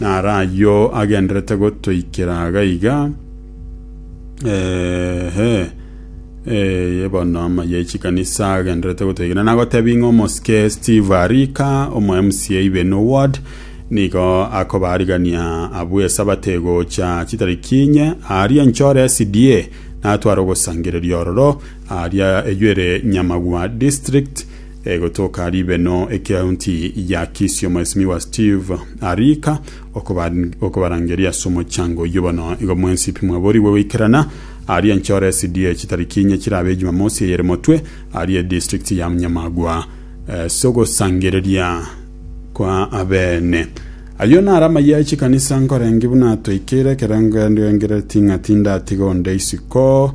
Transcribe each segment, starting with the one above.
Naro ayio agenderete gotoikera iga iga, eeh, eeh, bono amaya e chikanisa agenderete gotoikera. Nagotebia ng'a omosike Steve Arika, omo MCA Ibeno Ward, nigo akobarigania abwo Esabato egocha chitariki inye, aaria nchore SDA, natware ogosangereria ororo, aaria eywo ere Nyamagwa District, Egotoka ribeno ekeaunti ya Kisii Omwesimigwa Steve Arika okobarangeria ase omochango oyio bono igo mwensipi mwaborigwe goikerana aria enchore SDA chitariki inye chirabe ejumamosi eyere motwe aria edistrict ya Nyamagwa ase ogosangereria kwa abene Ayio nare amayia e chikanisa nkorenge buna toikeire ekerengo endi oengereri ting'ati ndatiga onde isiko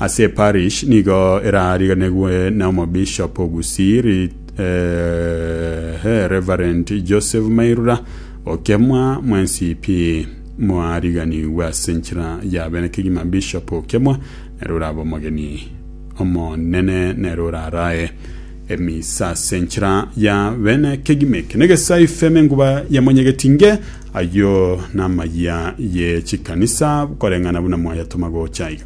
Ase eparish nigo erariganigwe na omobishop o Gusii Rit, eh, Reverend Joseph Mairura Okemwa mwencp. Mwariganigwe ase nchera ya bene kegima Bishop Okemwa nere orabe omogeni omonene nere orarae emisa ase nchera ya bene kegima eke negesai feme enguba ya monyegeti nge ayio namayia ye chikanisa koreng'ana buna mwayatoma gocha iga.